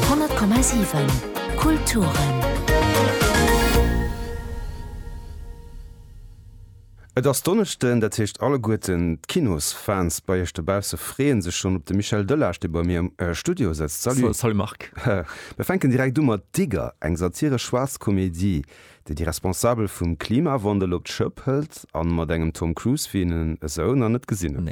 100,7 Kulturen. Et ass Donneschden, dat heescht alleguerten d'Kinosfans bei iech dobausse freeën sech schonn op de Michel Delage, dee bei mir am Studio sëtzt. Salut! Salut Marc! Mir fänken direkt u mat Digger, eng satiresch schwaarz Komedie, dee déi Responsabel vum Klimawandel op d'Schëpp hëlt a mat engem Tom Cruise wéi en esou nach net gesinn hunn.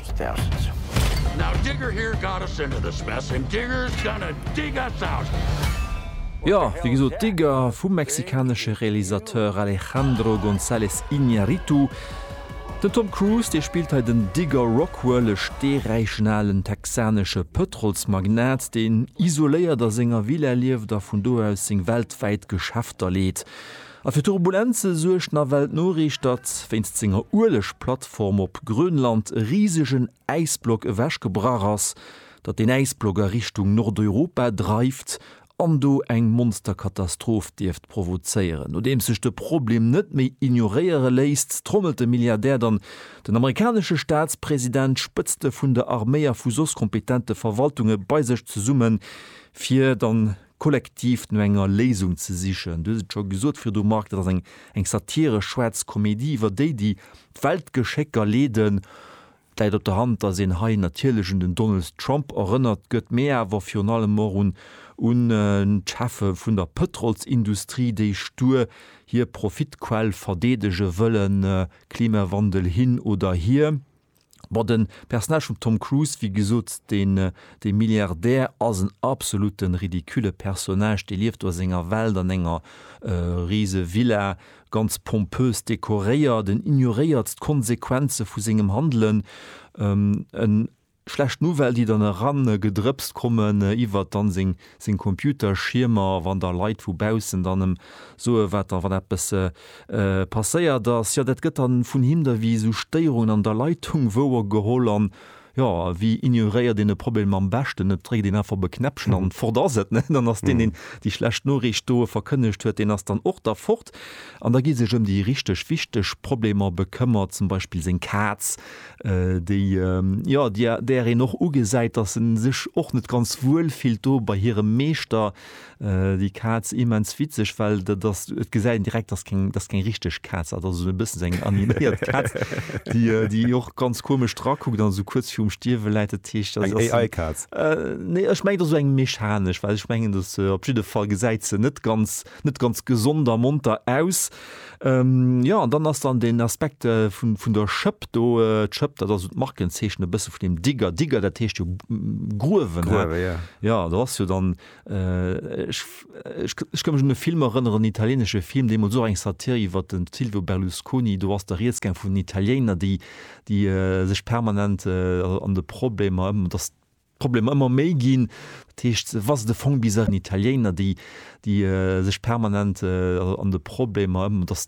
Jo, wéi gesot, Digger vum mexikanesche Realisateur Alejandro González Iñárritu. Den Tom Cruise, dee spillt hei den Digger Rockwell, e steeräichen alen texanesche Pëtrolsmagnat, deen isoléiert a senger Villa lieft a vun do aus seng weltwäit Geschäfter leet. A fir Turbulenze suergt nawell d'Noriicht, datt wéinst senger Uelegplattform op Grönland e risegen Äisblock ewechgebrach ass, datt deen Äisblock a Richtung Nordeuropa dreift an do eng Monsterkatastroph dierft provozéieren. Nodeems sech de Problem net méi ignoréiere léisst, trommelt de Milliardär dann den amerikanesche Staatspresident, d'Spëtzte vun der Arméi a vu soss kompetente Verwaltunge bei sech zesumme fir dann, kollektiv no enger Léisung ze sichen. Du hues et scho gesot virdu, Marc, dat ass eng satiresch schwaarz Komedie iwwer déi, déi d'Weltgeschécker leeden. Et läit op der Hand, datt een hei natierlech un den Donald Trump erënnert gëtt, mee awer virun allem och un d'Cheffe vun der Pëtrolsindustrie, déi stur hir Profitquell verdeedege wëllen, Klimawandel hin oder hier. Bon, den Personnage vum Tom Cruise, wéi gesot, deen deen Milliardär ass en absoluten ridicule Personnage, dee lieft do a senger Welt an enger riese Villa, ganz pompös dekoréiert, en ignoréiert d'Konsequenzen vu sengem Handelen, en schlecht Nouvelle déi dann eran gedrëpst kommen iwwert dann seng sinn Computerschiermer, wann da Leit vu baussen dann em soe wat da wann eppes passéiert ass, jo dat gëtt da vun him da wéi esou Stéierungen an der Leitung wouer geholl an jo wéi ignoréiert een e Problem am beschten, et dréckt een einfach op e Knäppchen an fort ass et, ne, dann ass deen deen déi schlecht Noriicht doe verkënnegt huet, deen ass dann och da fort an da gi sech ëm déi richteg wichteg Problemer bekëmmert, zum Beispill seng Kaz, déi jo där een och ugesäit, dass se sech och net ganz wuel fillt do bei hirem Meeschter, déi Kaz. Immens witzeg, well dat ass, et gesäit een direkt, dass keng, dass keng richteg Kaz, dat ass esou e bëssen esou eng animéiert Kaz, déi déi och ganz komesch drakuckt an esou kuerz virum Stierwe läit. Dat heescht, dass se. Eng AI-Kaz? Nee, ech mengen, et ass esou eng mechanesch, well ech mengen, dass se op jidde Fall gesäit se net ganz. net ganz gesond a monter aus. Jo an dann ass dann den Aspekt vun der Schëpp do. D'Schëpp, dat ass esou d'Markenzeechen e bësse vun dem Digger. Digger, dat heescht jo gruewen. Gruewen, jo. Jo, do ass jo dann, ech ka mech un e Film erënneren, en italienesche Film, deemools och eng Satir iwwer de Silvio Berlusconi. Do ass da Rieds gaang vun den Italiener, déi sech permanent an de Problemer, datt. D'Problemer ëmmer méi ginn. Dat heescht, wa se de Fong bis. Italiener, déi sech permanent an de Problemer ëm, datt